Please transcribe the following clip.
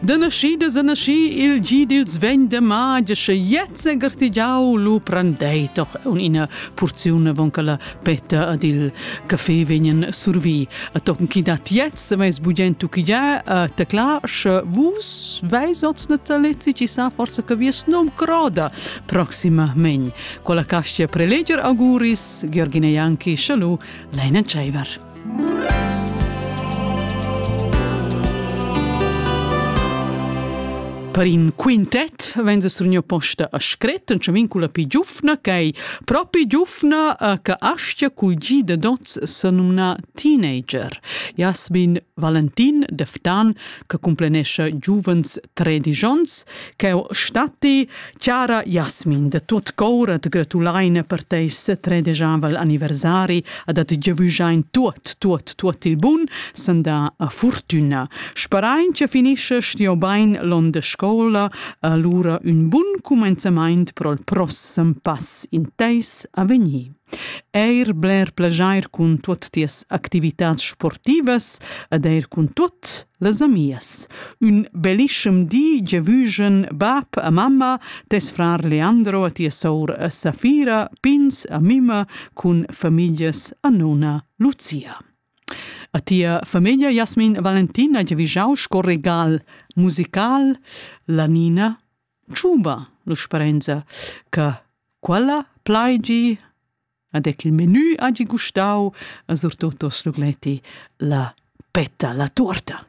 Deneschi de seneschi il gi dils vegn de magia sche jetzt en gartigiau lu prendei doch ina porziun avon che la petta ad il caffè vegnan survi a tochen chi dat jetzt veis bugent tuchigia a tecla sche vus veis oz natalezi ci sa forse che vies nom croda proximament quella castia preleger auguris Georgina Janki schalu leinen tscheiver Per in quintet vegn a surgnir posta a scret en chamin culla pi giufna ch'ei propi giufna che astga culgir da dots sa numna teenager. Jasmin Valentin de Ftan che cumplenescha giuvens tredisch onns, ch'eu statti Chara Jasmin, da tot cor at gratulaina per teis setredigiavel anniversari ed at giavüschain tuot, tuot, tuot il bun sandà a furtüna. Sperain cha finisches tieu bain l'on da scoula alura ün bun cumenzamaint pro'l prossem pass in teis avegnir. Eir bler plejair cun tuot tias activitats sportivas ed eir cun tuot Las amias. Ün bellischem di giavüschen bap a mamma, tes frar Leandro a tia sour a Safira, pins a mima cun famiglias a nona Lucia. A tia famiglia Jasmin Valentina giavüschau sco regal musical la Nina Tschuba, l'usperinza, che quella plaigi Ad ec il menü hagi gustau a surtut oss Rugletti la petta, la tuorta.